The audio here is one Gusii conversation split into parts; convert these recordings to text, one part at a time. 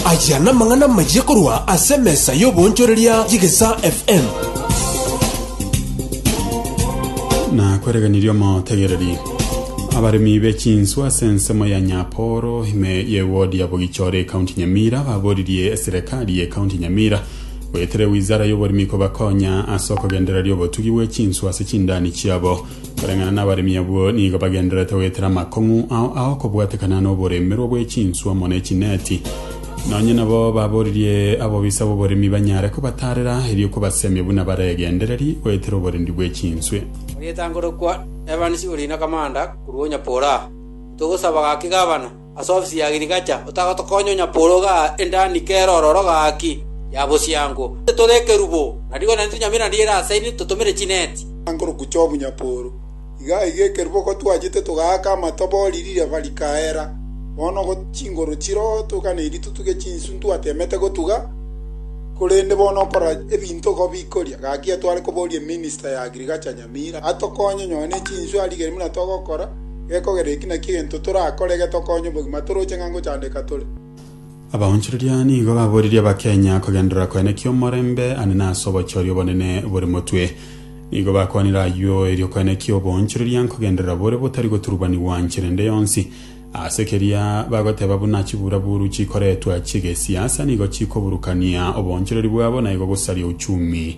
Aya namang'ana amayia korwa ase emesa y'oboonchoreria y'Egesaa FM. na kweregenirie omotegereri abaremi be chinswe ase ensemo ya nyaporo ime ye wodi ya bogichore ekaunti nyamira baboririe eserekari ye ekaunti nyamira goetera ewizara y'oboremi kobakonya ase okogendereria obotugi bwe chinswe ase chindani chiabo Koreng'ana nabaremi abwo nigo bagendererete goetera amakong'u ao aokobwatekana noboremerwa bwe chinswa amo ne chineti. Nonye nabo baboririe abobisa b'oboremi banyare kobatarera erio kobasemia buna bare egendereri goetera oborendi bwe chinswe. Orietangorokwa Evans Orina Kamanda korwa Onyapora, Ntogosaba gaki Gavana, Ase ofisi ya Agriculture otagotokonya onyaporo iga endani kera ororo gaki ya bosiango. Ase tore ekerubo na rigori na ntunyamiri na riera ase ini totomire chineti. Ankorokwa chi'obunyaporo. Iga aiga ekerubo gotwachete togaaka amatobo oriri riaba rikaera. Bono go chingoro chiroo toganeiri totuge chinsu ntwatemete gotuga korende bono okora ebinto igo bikoria. Gaki etware koboria eminister ya Agriculture nyakera. amira, atokonye nonya ne chinswe arigerie buna togokora, gekogera eki naki egento torakore getokonye obogima toroche ng'a ngochandeka tore. Abaonchoreria nigo baboririe Abakenya kogenderera kwene ki'omorembe ane na ase obochori obonene bore motwe. Nigo bakwanire ayio erio kwene ki'oboonchoreria nkogenderera bore botari goturubanigwa nchera ende yonsi. Ase keria bagoteba buna chiburaburu chikoretwa chi'egesiasa nigo chikoburukania oboonchoreri bwabo na igo gosaria uchumi.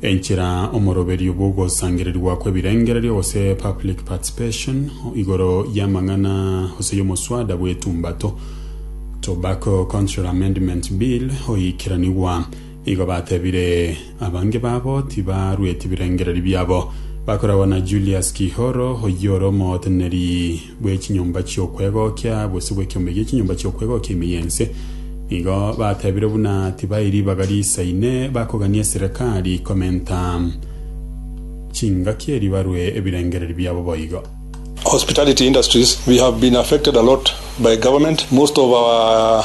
Enchera omoroberio bw'ogosangererigwa kw'ebirengererio gose public participation igoro y'amang'ana gose y'omoswada bw'etumbato, Tobacco Control Amendment Bill, oiikeranigwa. Igo batebire abange babo tibarueti birengereri biabo. Bakoragwa na Julius Kihoro, oyio ore omoteneneri bwe chinyomba chi'okwegokia, gose bw'ekeombe gie chinyomba chi'okwegokia ime y'ense. Nigo batebire buna tibai ribaga riisaine, bakogania eserekari komenta chingaki eri barue ebirengereri biabo boigo. Hospitality industries, we have been affected a lot by government, most of our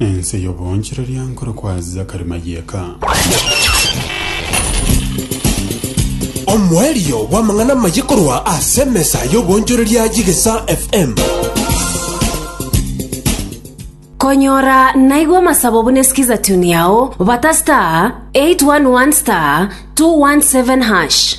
Ense y'oboonchoreria nkore kwa Zakari Mayeka. Omoerio bw'amang'ana amaye korwa ase emesa y'oboonchoreria y'Egesa FM. Konyora naigwa amasabo buna sikiza tune yao bata star 811 star 217 hash.